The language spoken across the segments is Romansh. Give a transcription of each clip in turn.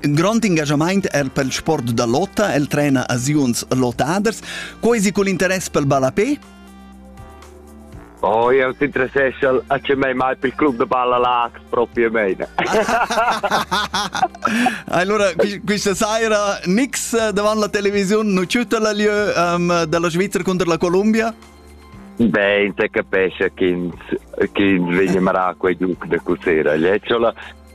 In grond engaschamaint er pel sport da lotta, el trena a ziuns lottaders. Co esi cul interess pel ballapé? Oh, eu s'interessescha a che mei mai pel club de balla lag, proprio meine. allora, questa sera nix eh, davanti la televisione, non c'è la lieu um, della Svizzera contro la Colombia? Beh, se capisce che veniamo a quei duc de Cusera, gli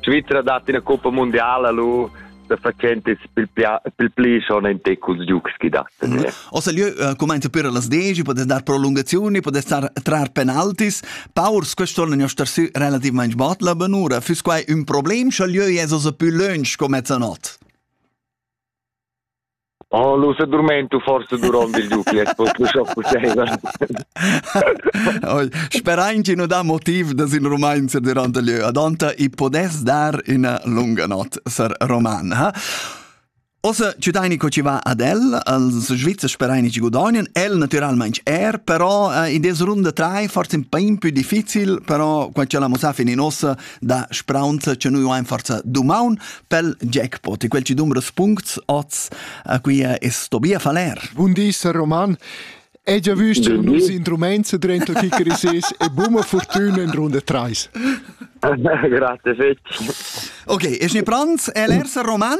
Svizra dat ina coppa mundiala lu da facentes pil pli schon en te culs giugs chi dat. Mhm. Ossa lieu eh, commenta per las 10, podes dar prolungazioni, podes dar trar penaltis. Paurs quest'anno ne star su relativamente bot la benura. Füss quai un problem, scha lieu es ossa più lunch come zanot? Oh, lu sedurmentu forse duront il dupi, es poco scho possibel. Sperain chi nu dà motiv da sin romains durant il lieu. Adonta i podess dar ina lunga not sar roman, ha? Ossa ciutaini co ci va ad el, als Svizzers speraini ci gudagnien, el naturalmente er, però uh, in des runde trai forse un po' più difficil, però quando c'è la Musafin in ossa, da spraunza che noi ein forza dumaun pel jackpot e quel ci dumbra spunts oz a qui es Tobia Faller. Bun di, Sir Roman. Hai già visto nus instruments dentro chicarisis e buma fortuna in runda 3. Grazie fetch. Ok, es ne pronts? El er Roman?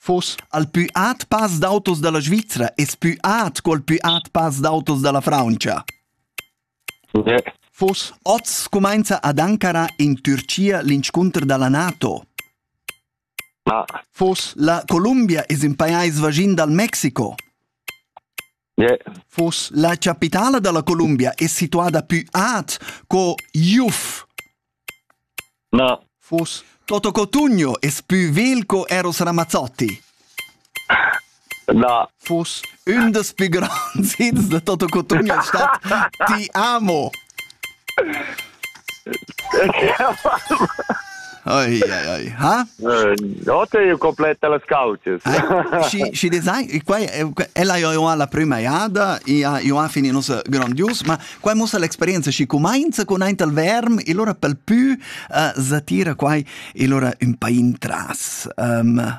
Fuss al pü aut pass d'autos dalla Svizra es pü aut co al pü aut pass d'autos dalla Frauntscha. Fuss oz cumainza ad Ankara in Türchia l'inscunter dalla NATO. Fuss la Columbia es ün pajais vaschin dal Mexico. Yeah. Vos la capitala dalla Columbia è situada più ad co Juf. No. Vos Toto Cotugno è più vel co Eros Ramazzotti. No. Vos un des più grands hits de Toto Cotugno è stat Ti amo. Oi, oi, oi. Ha? Notte io completa las cauces. Ci ci design qua ella io ha la prima iada, ia io ha fini nossa grandius, ma qua mussa l'experienza ci comincia con ein tal verm e allora pel più uh, satira qua e allora un pa intras. Um,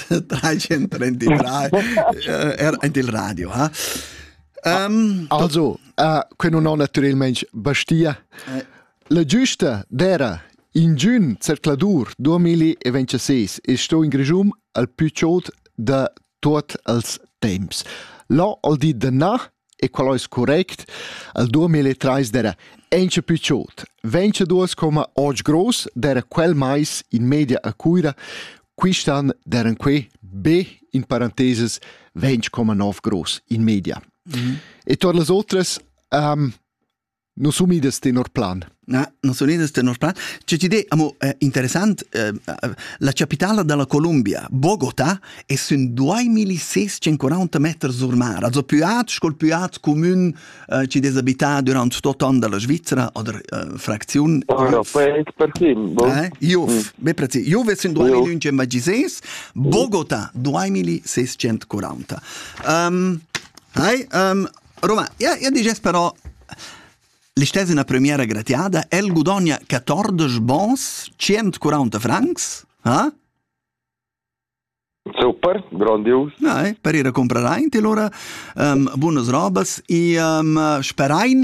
333 eh, er ein il radio ha um, also uh, que non ho naturalmente bastia eh. la giusta d'era in giun zercladur 2026 e sto in grejum al più chaud da tot als temps Là al di de na e qual ais correct, al 2003 d'era auncha plü chod. Ventschaduos coma oggi gross d'era quel mais in media a Cuira, quist'an d'eran que be in parenteses 20,9 gross in media. Mm -hmm. E todas las otras um, Non sun idas tenor plan. Na, non sun idas tenor plan. C'è ti de, amo, eh, interessant, eh, la capitala della Colombia, Bogota, e sun 2640 meter sur mar, also più at, scol più at comun eh, ci des abità durant tot an della Svizzera oder eh, fracziun. Ora, poi per chi? Bo? Eh? Iuf, mm. be prezi, Juve sun 2116, Bogota 2640. Um, ehm, Hi, um, Roma, ja, ja diges però l'istess üna premiera gratiada, el gudogna 14 bons, 140 francs, eh? Super, grandios. Ja, per ir a comprar aint e lura um, bunas robas e um, sperain